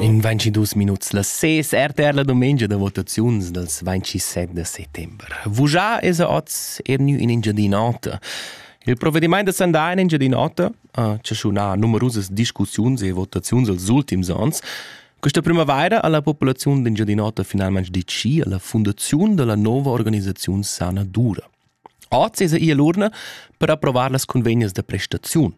In 22 minuts las 6 RTR la domenica da votaziuns dals 27 da settembre. Vujà es a oz er gnü in Engiadin'Ota. Il provvediment da sandà in Engiadin'Ota ha chaschunà numerusas discussiuns e votaziuns els ultims ans. Questa primavaira ha la populaziun d'Engiadin'Ota finalmente deciso la fundazione della nuova organizzazione Sana Dura. Oz es ia l'urna per approvar las convegnas da prestaziun.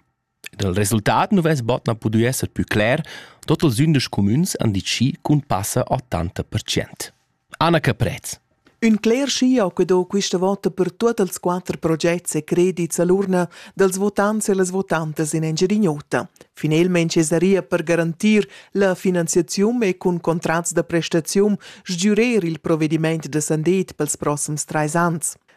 Dal resultat nu vess bod na pudü esser pü cler, tuot ilsündesch cumüns han dit chi cun passa 80 percent. Anna Caprez. Ün cler schio che do quista vota per tuot els quatter progets e credits a l'urna dals votants e las votantas in Engiadin'Ota. Finelmaing es daria per garantir la finanziaziun e cun contrats da prestaziun sgürer il provedimaint da sandet pels prossims trais ans.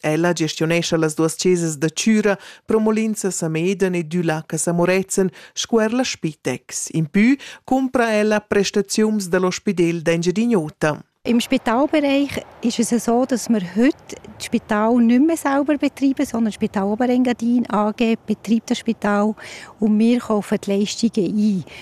Ella gestionescha las duas chesas da Chüra, Promolinza Sameden e Düla Casa Moretzen sco er la Spitex. In pü cumpra ella prestaziuns dal ospidel d'Engiadin'Ota. Im Spitalbereich ist es so, dass wir heute das Spital nicht mehr selber betreiben, sondern das Spital Oberengadin AG betreibt das Spital und wir kaufen die Leistungen ein.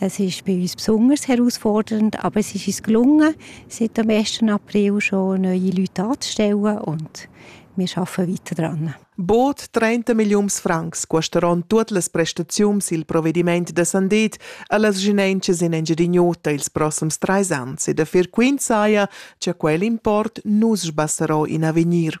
Es ist bei uns besonders herausfordernd, aber es ist uns gelungen, seit dem 1. April schon neue Leute anzustellen und wir arbeiten weiter dran. Boot 30 millions francs custeron tuot las prestaziuns il provvediment da sandet a las genentschas in Engiadin'Ota ils prossums trais ans e da fer quint saja cha quel import nus sbassarò in avegnir.